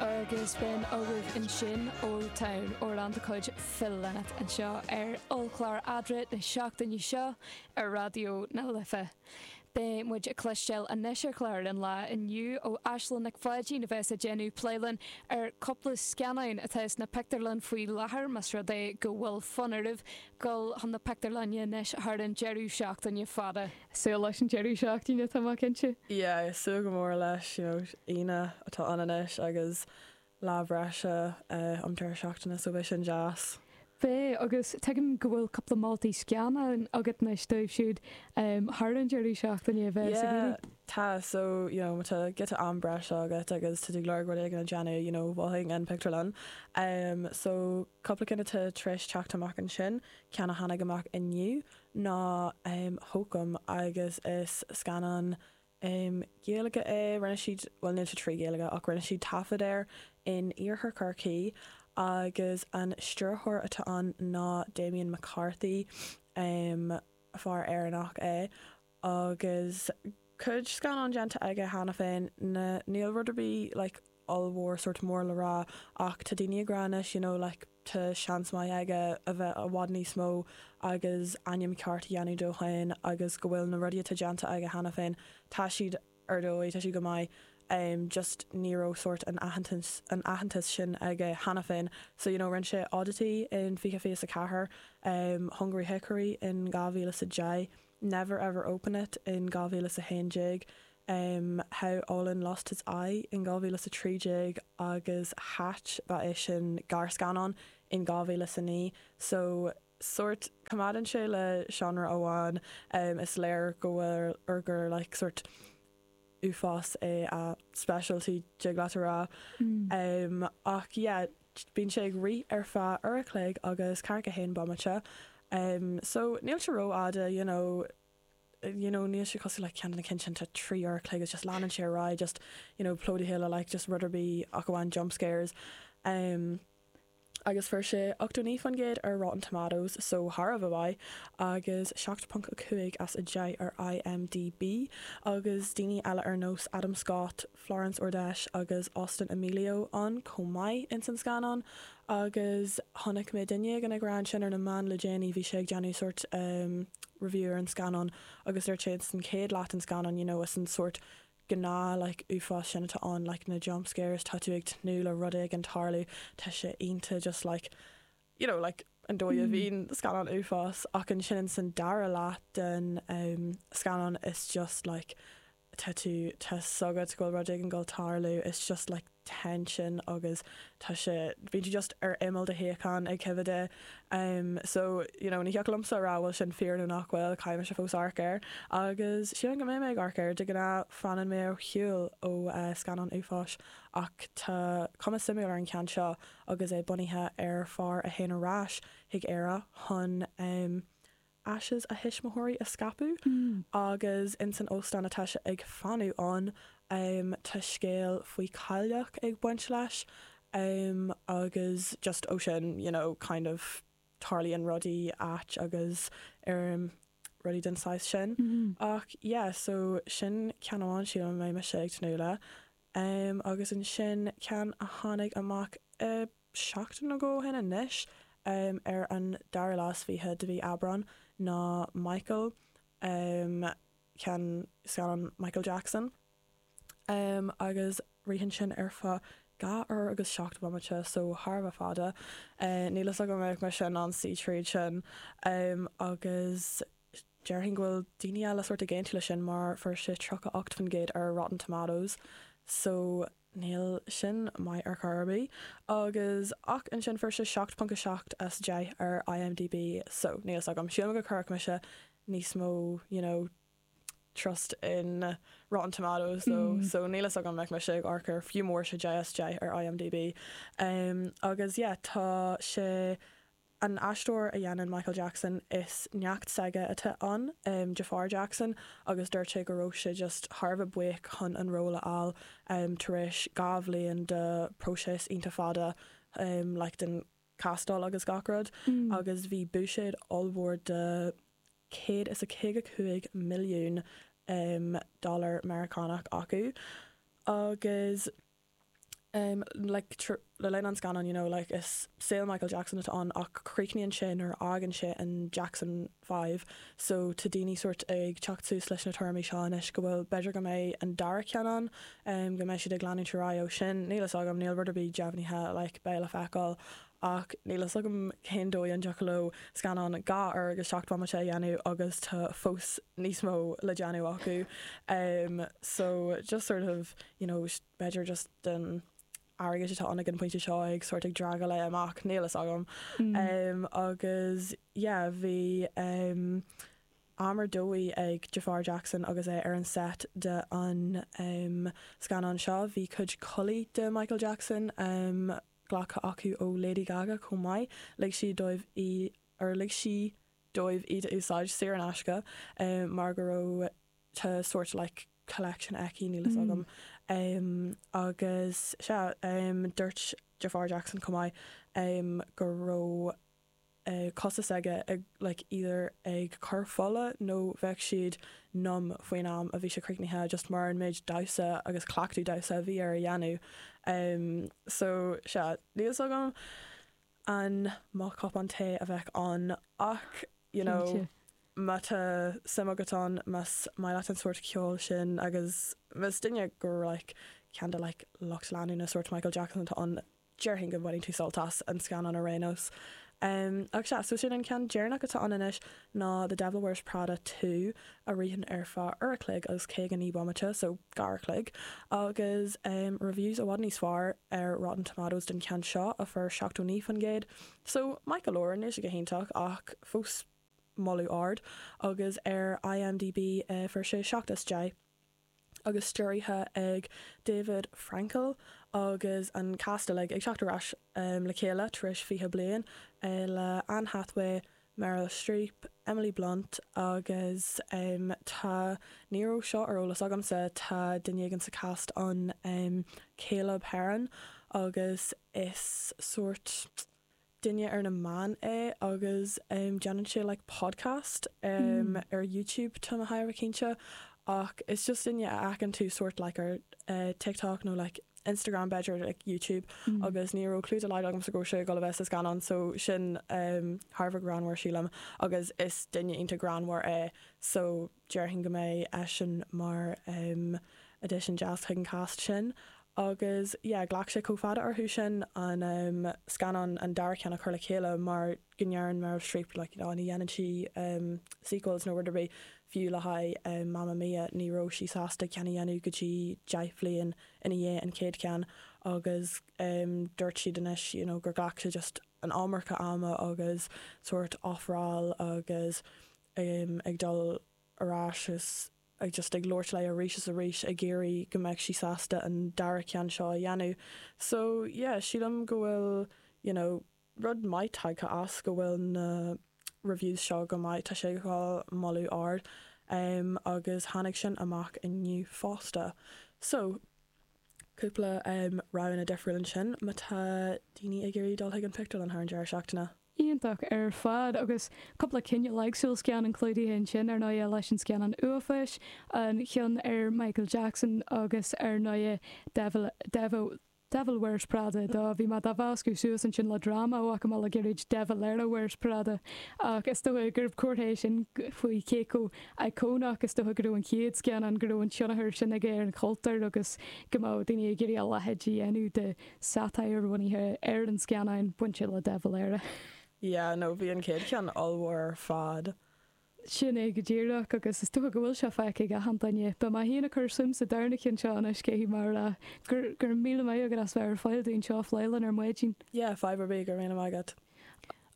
agus b'in agaibh ansin Old Town amhrán de chuid Phil Lynott anseo ar ollchlár Eadra na seachtaine seo ar Raidió na Life. Beidh muid ag cloisteáil anois ar chlár an lae inniu ó Aislinn Nic Pháidín a bheas ag déanamh plé linn ar chúpla scannán atá sna pictiúrlann faoi láthair mas rud é go bhfuil fonn oraibh dul chun na pictiúrlainne anois thar an deireadh seachtaine fada. Súil leis an deireadh seachtaine, tá mé cinnte! yeah súil go mór leis you know Aoine atá ann anois agus lá breise an deireadh seachtaine so beidh sin deas. Beidh agus tuigim go bhfuil cúpla moltaí scannáin agat anois dóibh siúd thar an deireadh seachtaine a bheas ag iarraidh. yeah tá so you know má tá giota am breise agat agus tá tú ag lorg rud éigin a dhéanamh you know mholfainn an pictiúrlann so cúpla ceann atá tar éis teacht amach ansin ceann a tháinig amach inniu ná Hokum agus is scannán Gaeilge é. Rinne siad, bhuel níl sé trí Ghaeilge ach rinne siad taifead air in iarthar Chorcaí agus an stiúrthóir atá ann ná Damian McCarthy, fear Éireannach é agus cuid scannán déanta aige cheana féin, na, níl rud ar bith like, ollmhór, sórt mór le rá, ach tá daoine ag rá anois, you know, like tá seans maith aige a bheith i bhfad níos mó agus ainm ceart a dhéanamh dó féin agus go bhfuil na rudaí atá déanta aige cheana féin, tá siad ar dóigh, tá siad go maith, em, just ní raibh sórt an t-aitheantas sin aige cheana féin. So, you know, rinne sé Oddity in fiche fiche is a ceathair, em, Hungry Hickory in dhá mhíle is a deich, Never Ever Open It in 2011, em, How Olin Lost His Eye in 2013 agus Hatch, ba é sin gearrscannán, in 2009. So, sórt, coimeádann sé le seánra amháin, em, is léir go bhfuil, or gur like, sórt, uafás é a specialty tig leat a rá ehm ach yeah bíonn sé ag rith ar feadh uair an chloig agus ceathracha a haon bomaite ehm so níl sé rófhada you know you know níl sé cosúil le ceann de na cinn sin atá trí uair an chloig is just leanann sé ar aghaidh just you know plódaithe le like just rud ar bith ach amháin jump scares ehm. agus fuair sé 89% ar Rotten Tomatoes, so thar a bheith maith, agus 7.5 as 10 ar IMDB, agus daoine eile ar nós Adam Scott, Florence Ordesh agus Austin Amelio ann chomh maith ins an scannán, agus chonaic mé duine éigin ag rá ansin ar na meáin le déanaí, bhí sé ag déanamh sórt review ar an scannán agus dúirt sé ins an chéad leath den scannán, you know, is an sórt gnáth like uafás sin atá ann like na jump scares tá tú ag tnúth le rud éigin tarlú tá sé iontach just like you know like an dóigh a bhíonn scannán uafás ach ansin ins an dara leath den um, scannán is just like tá tú tá a fhios agat go bhfuil rud éigin ag gabháil tarlú is just like tension agus tá sé bíonn sé just ar imeall do shuíocháin ag coimhead é em so you know ní thiocfadh liomsa a rá bhfuil sin fíor nó nach bhfuil caithfidh mise fós amharc air agus sílim go mbeidh mé ag amharc air de ghnáth fanann mé ar shiúl ó eh scannáin uafáis ach tá cuma suimiúil ar an cheann seo agus é bunaithe ar fear a théann ar ais chuig Éire chun Ashes a thuismitheoirí a scaipeadh agus ins an óstán atá sé ag fanacht ann tá scéal faoi chailleach ag baint leis agus just ó sin you know kind of tarlaíonn rudaí ait agus ar rudaí den saghas sin ach yeah so sin ceann amháin sílim a mbeidh mise ag tnúth leis agus ansin ceann a tháinig amach seachtain ó shin anois, ar an dara lá is fiche de mhí Aibreán, ná Michael, ceann scannán Michael Jackson, agus ritheann sin ar feadh dhá uair agus seacht mbomaite, so thar a bheith fada. Níl fhios agam an mbeadh mise in ann suí tríd sin, agus déarfainn go bhfuil daoine eile sórt ag aontú le sin mar fuair sé tríocha ocht faoin gcéad ar Rotten Tomatoes, so. Níl sin maith ar chor ar bith. Agus ach ansin fuair sé 7.7 as 10 ar IMDB so níl fhios agam, sílim go gcuirfeadh mise níos mó you know trust in Rotten Tomatoes so níl fhios agam an mbeadh mise ag amharc air fiú má fuair sé 10 as 10 ar IMDB. Agus yeah tá sé An aisteoir a dhéanann Michael Jackson, is neacht s'aige atá ann, Jaafar Jackson, agus dúirt sé go raibh sé just thar a bheith buíoch chun an ról a fháil tar éis dhá bhliain de próiseas iontach fada like den chastáil agus gach rud agus bhí buiséad ollmhór de céad is a caoga cúig milliún dollar Meiriceánach acu agus em like tríd le linn an scannán you know like is saol Michael Jackson atá ann ach críochnaíonn sé nuair a fhágann sé an Jackson Five so tá daoine sórt ag teacht suas leis na tuairimí seo anois go bhfuil b'fhéidir go mbeidh an dara ceann ann em go mbeidh siad ag leanúint ar aghaidh ó sin níl fhios agam níl rud ar bith deimhnithe like beidh le feiceáil ach níl fhios agam cén dóigh an dtiocfadh leo scannán dhá uair agus seacht mbomaite a dhéanamh agus tá fós níos mó le déanamh acu em so just sort of you know b'fhéidir just don airgead atá ann ag an bpointe seo ag sórt ag dragáil é amach níl fhios agam um agus yeah bhí um am ar dóigh ag Jaafar Jackson agus é ar an set de an um scannán seo bhí cuid culaith de Michael Jackson um glactha acu ó Lady Gaga chomh maith lig siad dóibh í or lig sí dóibh iad a úsáid saor in aisce um mar go raibh sórt like collection aici, níl fhios agam. Agus sea, dúirt Jafar Jackson chomh maith go raibh cosa aige like either ag cur fola nó bheadh siad numb faoin am a bhí sé críochnaithe just mar gheall ar an méid damhsa agus cleachtadh damhsa a bhí air a dhéanamh. So sea, níl fhios agam. an mbeadh an té a bheadh ann ach you know má tá suim agat ann más maith leat an sórt ceoil sin agus más duine gur like ceann de like lucht leanúna sórt Michael Jackson atá ann déarfainn go mbainfidh tú sult as an scannán ar aon nós. Em ach sea so sin an ceann deireanach atá ann anois. ná The Devil Wears Prada Two a ritheann ar feadh uair a chloig agus caoga naoi bomaite, so dhá uair a chloig, agus reviews i bhfad níos fearr ar Rotten Tomatoes don cheann seo a fuair 79%, so maith go leor, níl sé go hiontach ach fós moladh ard, agus ar IMDB fuair sé 7 as 10. agus stiúrtha ag David Frankel agus an cast uilig ag teacht ar ais le chéile tar éis 20 bliain, le Anne Hathaway, Meryl Streep, Emily Blunt agus tá, ní raibh seo ar eolas agamsa, tá duine éigin sa cast ann, Caleb Hearon, agus is sórt, duine ar na meáin é agus déanann sé like podcast ar YouTube níl mé ró-chinnte ach is just duine a fheiceann tú sórt like ar TikTok nó like Instagram b'fhéidir like YouTube agus ní raibh clue dá laghad agamsa go raibh sé ag dul a bheith sa scannán so sin thar a bheith greannmhar sílim agus is duine iontach greannmhar é so déarfainn go mbeidh eisean mar addition deas chuig an cast sin agus yeah ghlac sé chomh fada orthu ansin an scannán, an dara ceann, a chur le chéile mar go ndeireann Meryl Streep like you know ní dhéanann sí sequels nó rud ar bith fiú le haghaidh Mamma Mia ní raibh sí sásta ceann a dhéanamh go dtí deich bhliain ina dhiaidh an chéad cheann agus dúirt siad anois you know gur ghlac sé just an iomarca ama agus sórt ofráil agus ag dul ar ais is ag just ag labhairt léi arís is arís ag iarraidh go mbeadh sí sásta an dara ceann seo a dhéanamh so yeah sílim go bhfuil you know rud maith tagtha as go bhfuil na reviews seo go maith tá sé ag fáil moladh ard um agus tháinig sin amach inniu fosta so cúpla roghanna difriúil ansin má tá daoine ag iarraidh dul chuig an pictiúrlann thar an deireadh seachtaine. Iontach ar fad, agus cúpla cineál éagsúil scannáin clúdaithe ansin, ar ndóighe, leis an scannán uafáis, an ceann ar Michael Jackson agus ar ndóighe Devil Wears Prada 2, bhí mé dá mheascú suas ansin le dráma amach ó mhuintir Gaeirid De Valera Wears Prada, ach is dóighe gur comhartha é sin faoi cé chomh íocónach, is dócha go raibh an chéad scannán go raibh an tionchar sin aige ar an chultúr agus go mbeadh daoine ag iarraidh a leithéid a dhéanamh de satire bunaithe ar an scannán bainte le De Valera. Yeah, no, bhí an chéad cheann ollmhór ar fad. Sin é go díreach, agus is dócha go bhfuil sé feicthe ag achan duine. Tá mé féin ag cur suim sa darna ceann seo anois, cé hí mar a, go raibh míle maith agat as bheith ar fáil dúinn seo a phlé linn ar maidin. Yeah, fadhb ar bith, go raibh míle maith agat.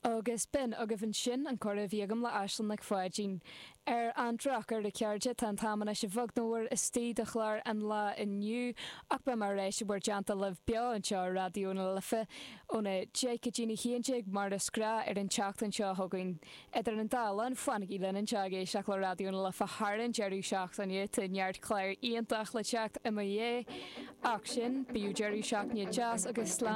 Agus b'in agaibh ansin an comhrá a bhí agam le Aislinn Nic Pháidín. Ar an drochuair, a chairde, tá an t-am anois a bheag nó a mhór istigh de chlár an lá inniu, ach beidh mé ar ais i bhur dteannta libh beo anseo ar Raidió na Life óna deich go dtí a haon déag mar is gnách ar an tseachtain seo chugainn. Idir an dá linn, fanaigí linn anseo ag éisteacht le Raidió na Life thar an deireadh seachtaine, tá neart clár iontach le teacht i mo dhiaidh. Ach sin, bíodh deireadh seachtaine deas agus slán.